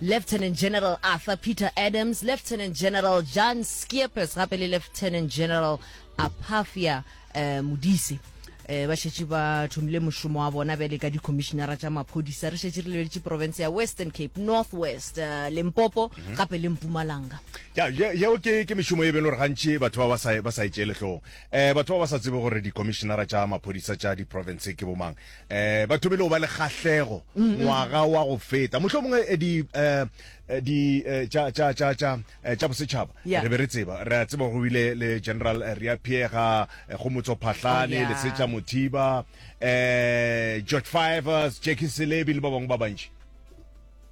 Lieutenant General Arthur Peter Adams, Lieutenant General Jan Schiepers gape le Lieutenant General Aphafia eh, Modise eh, ba šetše ba thomile mošomo wa bona bjale ka dikhomišenara tša maphodisa re šetše re lebeletše province ya western cape north west eh, limpopo mhm. gape le mpumalanga ya yeo ke ke mešomo e beng gore gantši batho ba ba sa ba sa e tšee letlong um batho ba ba sa tsebe gore dikhomišenara tša maphodisa tša diprovince ke bomang Eh, ba thomile go ba le kgahlego ngwaga wa go feta mohlomongwe eh, di eh, eh, di eh, tša tša tša tša eh, tša bosetšhaba Yeah. re be re tseba re a tseba go bile le general eh, reapiega eh, go motso phahlane Oh, yeah. lesetša mothiba eh, george fivers jackie selebi le ba bangwe ba bantši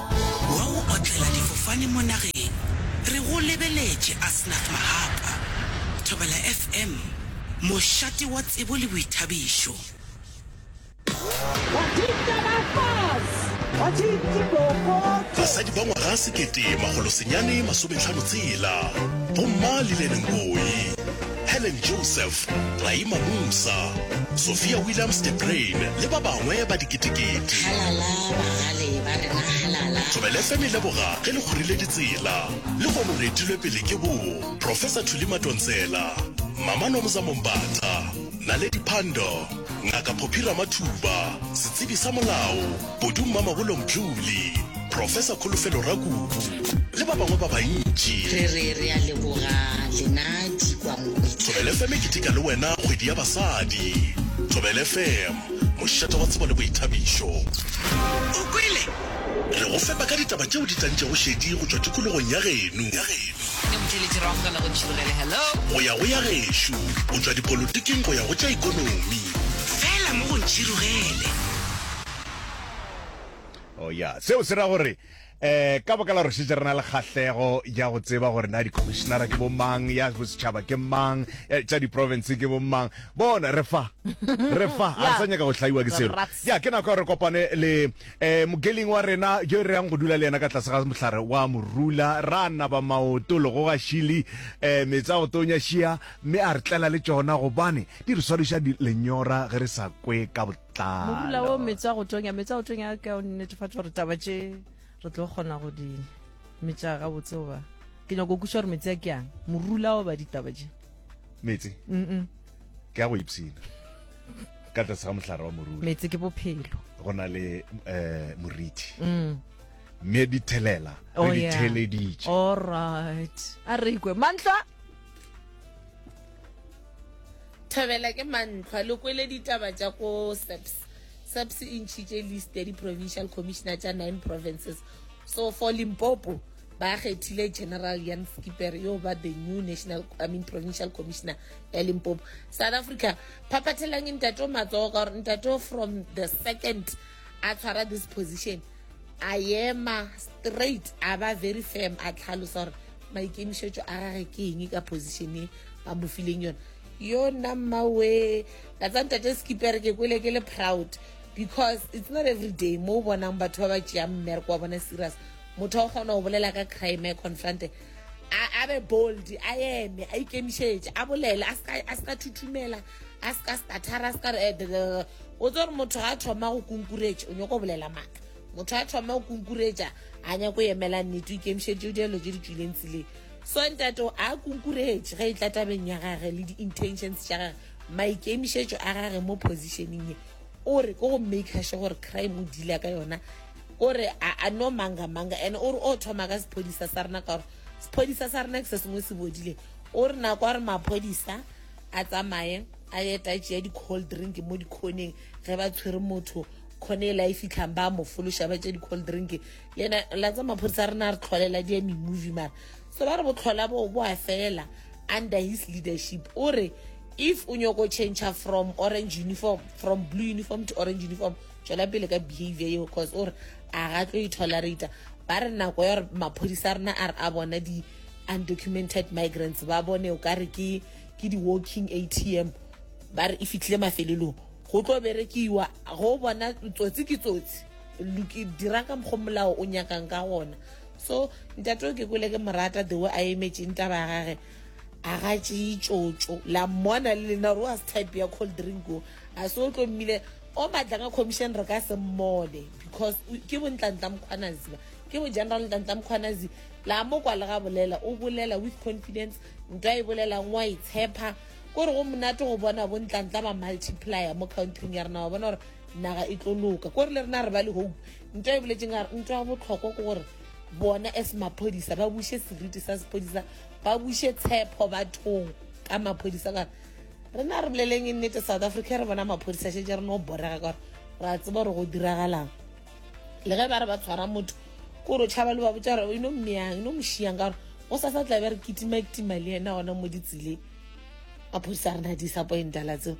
Wa go otlela difofane mo nageng. Re go lebeletše Asnath Mahapa, Thobela FM, mošate wa tsebo le boithabišo. Basadi ba ngwaga sekete makgolo senyane masometlhano tshela, Bomma Lillian Ngoyi. Helen Joseph, Raima Musa, Sophia Williams de Bruyn le ba bangwe ba diketekete. Halala bagale ba rena halala. Thobela FM e leboga ge le kgorile ditsela. Lehono re etilwe pele ke bo Professor Thuli Matontsela, Mama Nomza Mombatha, Naledi Pandor, Ngaka Phophi Ramathuba, Setsebi sa Molao, Bodu Mmamagolong Bjuli, Professor Kholofelo Rakubu le ba bangwe ba bantši. Re re re a leboga lena dikwankwitla. Thobel FM e keteka le wena kgwedi ya basadi. Thobel FM, mošate wa tsebo le boithabišo. O kwele? Re go fepa ka ditaba tšeo di tlantšego šedi go tšwa tikologong ya geno. Ke motšweletši Rrago ka nago Tšhirogele, hello. Go ya go ya gešo, go tšwa dipolotiking go ya go tša ikonomi. Fela mo go Ntšhirogele. Oh, ya. Seo se ra gore eh ka baka la gore šetse re na le kgahlego ya go tseba gore na di-commissionera ke bo mang ya bosetšhaba ke mang eh, tša di-province ke bo mang bona re fa re fa ga re sa nyaka go hlaiwa ke selo Rats. ya ke nako ya gore re kopane le eh mokeling wa rena yo re yang go dula le yena ka tlase ga mohlare wa morula ra naba maoto lego ga šili eh metsa go tonya šia mme a re tlela le tšona gobane di re swadiša di- lenyora ge re sa kwe ka bo- morula wo metsi a go tonya metsi a go tonya a ka o netefatsa gore taba tše re tlo kgona go di metša ga botse goba ke nyako kuša gore metsi a ke yang morula wo ba ditaba tše metsi ke a go ipsina ka tlase ga mohlare wa morula metsi ke bophelo go na le um moriti mm. mme dithelela re oh, ditheleditše allright a re ikwe mantlwa Thabela ke mantlhwa le kwele ditaba tša ko SAPS SAPS e ntšhitše list ya di-provincial commissioner tša nine provinces so for limpopo ba kgethile general yan skipper yo ba the new national i mean provincial commissioner ya limpopo south africa phaphathelang ntate o matsogo ka gore ntate from the second a tshwara this position a ema straight a ba very firm a tlhalosa gore maikemišetšo a gage ke eng ka position e ba mo fileng yone yo nna mmawe ka tsa ntate skipere ke kwele ke le proud because it's not every day mo o bonang batho ba ba tšeang mmereko wa bona serious motho o kgona go bolela ka crime a confronte a be bold a eme a ikemišetše a bolele a se ka thuthumela a se ka stathara a se ka re o tse gore motho a thoma go kunkuretša o nyako bolela maaka motho a thoma go kunkuretša a nyako emela nnete o ikemišeditše o dielo tse di tswileng tseleng so ntate a kunkuretše ge e tla tabeng ya gage le di-intentions tša gage maikemišetšo a gage mo positioning ye o re ko go makershe gore crime o deala ka yona o re a no manga manga and o re o thoma ka sephodisa sa rena ka gore sephodisa sa rena ke se sengwe se bodileng o re nako a re maphodisa a tsamaye a ye ta tšea di-cold drink mo dikhoneng ge ba tshwere motho khone e la e fitlhang ba mo fološa ba tšea di-cold drink le ena la tsa maphodisa a rena re tlholela di eme movie mara so ba re botlhola bo bo a fela under his leadership o re if o nyoko change from orange uniform from blue uniform to orange uniform tšwela pele ka behavior eo cause o re a ga tlo e tolerata ba re nako ya gore maphodisa a rena a re a bona di undocumented migrants ba bone o ka re ke ke di-walking atm ba re e fitlhile mafelelong go tlo berekiwa go bona tsotsi ke tsotsi dirang ka mokgwa molao o nyakang ka gona so ntate o ke kwele ke morata the way a emetseng taba ya gage a ga tseye tsotso la mmona le lena gore wa se type ya cold drink o a se o tlo mmile o matla ka commission re ka se mmone because ke bontla-ntla mokgwanaziba ke bo general ntla-ntla mokgwanaziba la mo kwa le ga bolela o bolela with confidence Ntwa e bolelang wa itshepa ko re go monate go bona bontlantla ba multiplier mo countryng ya rena wa bona gore naga e tlo loka ko re le rena re ba le hope ntwa e boletseng a ntwa ya botlhokwa ke gore bona as maphodisa ba buse seriti sa sephodisa ba buse tshepo bathong ka maphodisa ka rena re boleleng e nnete south africa re bona maphodisa shetse re no borega ka gore ra tseba gore go diragalang le ge ba re ba tshwara motho kore o tšhaba le ba botsa gore o ino mmeyang ino mošiyang ka gore go sa sa tla be re kitimakitima le ena gona mo ditseleng maphodisa re na disappointa la tseo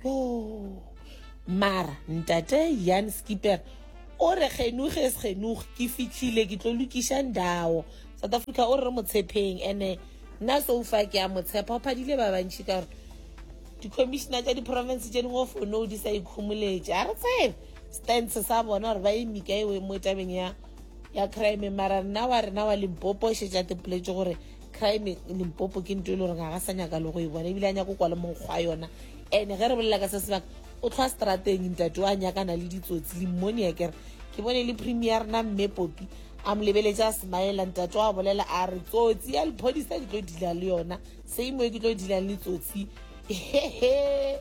yo mara ntate yan skipper o re genuge e segenuge ke fitlhile ke tlo lokiša ndawo south africa o re re motshepeng ene nna so fa ke a motshepa o phadile ba bantšhi ka gore di-commissioner tša di-province tše dingwe o fone o di sa ikhomoletše a re tsebe stance sa bona gore ba eme ka ewe mo tabeng ya ya crime mara rena wa rena wa limpopo o šetša tepoletse gore crime limpopo ke nto e le gore ga ga sa nyaka le go e bona ebile a nyako kwa le monkgwa yona ene ge re bolela ka se sebaka o tlhwa strateng ntate o a nyakana le ditsotsi limmonia kere ke bone le premier rena mme popi a mo lebeletse a smaela ntate wa bolela a re tsotsi ya lephodisa ke tlo dila le yona same way ke tlo dilang le tsotsi hehe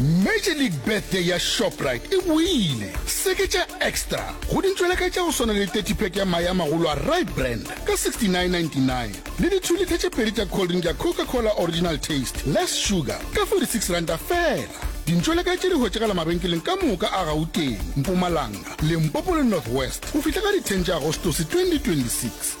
Major League Birthday ya Shoprite e boile! Seketša Extra go dintšweleka tša go swana le 30 pack ya mae a magolo a Rye Brand ka 69.99 le dithulitha tše pedi tša cold drink ya Coca-Cola Original Taste, Less Sugar ka 46 ranta fela. Dintšweleka tše di hwetšagala mabenkeleng ka moka a Gauteng, Mpumalanga, Limpopo le North West go fihla ka di 10 tša Agostose 2026.